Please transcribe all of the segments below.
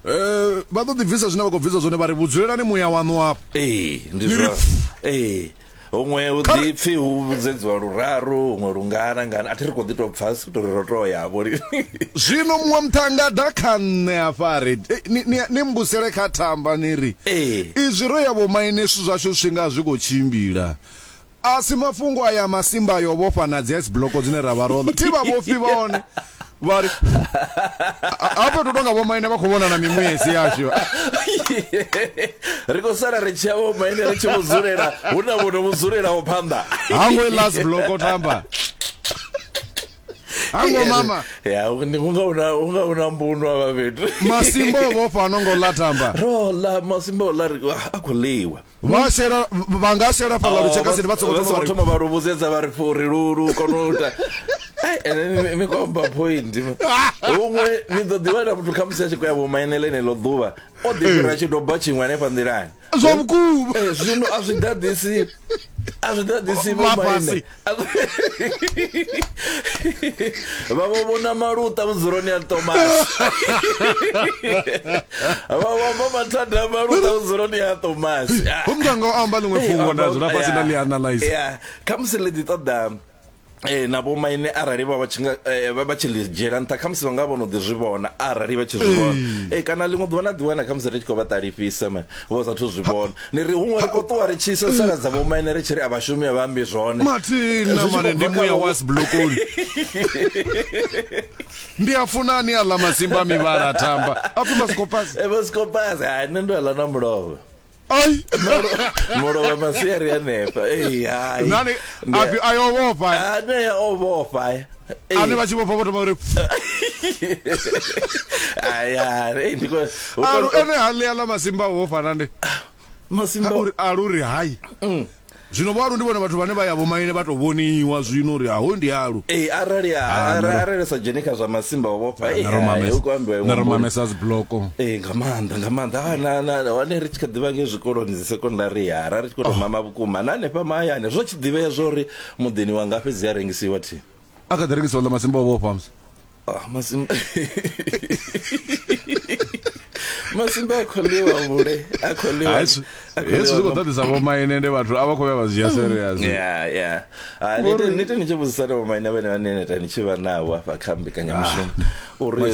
eh vha ḓo ḓi bvisa zwine vha khou bvisa zwone vha ri vhudzulelani muya waṋu afho ee ndi zwa ee huṅwe u ḓipfi hu vhudzedziwa luraru huṅwe lungana ngana a thi ri khou ḓi tou pfa si tou ri ro tou ya vho zwino muṅwe muṱhanga ḓa kha nṋe afha ri eh, ni mbusele kha thamba ni ri izwi ro ya vhomaine zwithu zwashu zwi nga zwi khou tshimbila A si mafhungo aya a masimba ayo o vhofha na dzi ice block dzine ra vha ro thi vha vhofhi vha hone vha ri hafho tou tonga vhomaine vha khou vhona na miṅwedzi yashu ri khou sala ri tshi ya vhomaine ri tshi vhudzulela hu na vhono vhudzulelaho phanḓa hango i last block o thamba hango mama ya ni kunga una unga una mbuno aba bethu masimbo vhofha no ngo ḽa thamba ro ḽa masimbo ḽa ri a khou ḽiwa vha shela vha nga shela fhala lu tsheka sini vha tsoko thoma vha thoma vha lu vhudzedza vha ri fhuri lu lu kono u ta ai ene ni ko ba point huṅwe ni ḓo ḓivha na muthu kha musi a tshi khou ya vho mainele ne ḽo ḓuvha o ḓi fhira tshi doba tshiṅwe hanefha nḓilani zwa vhukuma zwino a zwi ḓaḓisi a zwi ḓaḓisi vho maine vhavho vhona maluṱa vhudzuloni ya tomasi vhavhomba mathada maluṱa vhudzuloni ya tomasi homnganga o amba ḽiṅwe fhungo nda dzula fhasi nda ḽi analyze khamusi ḽi ḓi ṱoḓa Eh na vho maine arali vha vha tshi nga eh, vha tshi ḽi dzhiela nṱha khamusi vha nga vhono ḓi zwi vhona arali vha tshi zwi vhona eh kana ḽiṅwe ḓuvha na ḓi wana khamusi ri tshi khou vha ṱalifhisa ma vho sa thu zwi vhona Ndi ri huṅwe ri khou ṱuwa ri tshi sasaladza vhomaine ri tshi ri a vhashumi a vha ambi zwone. Mathina Zwi tshi mane khou ndi bva kha muya vhu- wa sibulokoni ndi a funa ani a ḽa masimba a mivhala a tamba a pfi masikopasi E vho sikopasi hai nṋe ndo ḽa na mulovha. ai Mulovha masiari hanefha. Ei hai. nani Ndi- a pfi ayo vhofha Ah, nee o vhofha. ane vha tshi vhofha vho thoma uri alu ene ha ḽea ḽa masimba ho fana nde masimbauri alu ri hai mm. zwino vho alu ndi vhone vhathu vhane vha ya vhomaine vha tou vhoniwa zwino uri aho ndi alu ee arali ah, arali sa dzheni kha zwa masimba ho vhofha ah, eeumamesa dzibloko ee nga maanḓa nga maanḓa ah, hone ri tshi kha ḓivha nge zwikoloni dzi sekondari ya ra ri tshi khou tou oh. mama vhukuma na hanefha mahayani zwo tshi ḓivhea zwa uri muḓini wa ngafhi dzi a rengisiwa thi a kha ḓi rengisiwa ḽa masimba o vhofha musi ah, masimba masimba a kholiwa vhule a kholiwa hezwi zwi khou ṱoḓisa vhomaine nde vhathu a vha khou vhuya vha zwi ya serious nite ni tshi vhudzisana vhomaine vhene vhane neta ni tshi vha navho afha kha mbekanyamushumo ah, uri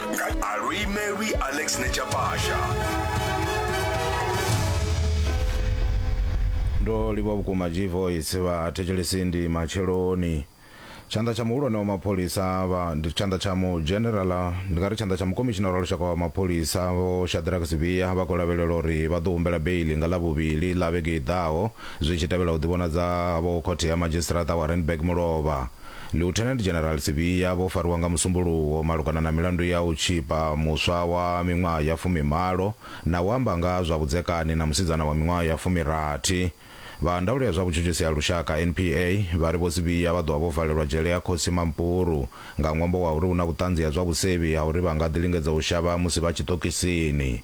Alui Mary Alex Nechapasha. ndo livha vhukuma g voice vhathetshelesi ndi matsheloni tshanḓa tsha muhulwane wa mapholisa vha ndi tshanḓa tsha mu generala ndi nga ri tshanḓa tsha mukomishinara wa lushaka wa mapholisa vho shadrack sibia vha khou lavhelela uri vha ḓo humbela beili nga ḽavhuvhili ḽa vhege i ḓaho zwi tshi tevhela u ḓivhonadza havho khothe ya madzhisiṱiraṱa wa randburg mulovha Lieutenant General Sibiya vho fariwa nga Musumbuluwo malugana na milandu ya u tshipa muswa wa miṅwaha ya fumimalo na u amba nga ha zwa vhudzekani na musidzana wa miṅwaha ya fumirathi. Vha ndaulo ya zwa vhutshutshisi ha lushaka, NPA, vha ri Vho Sibiya vha ḓo vha vho valelwa dzhele ya Khosi Mampuru nga ṅwambo wa uri hu na vhuṱanzi ha zwa vhusevhi ha uri vha nga ḓi lingedza u shavha musi vha tshiṱokisini.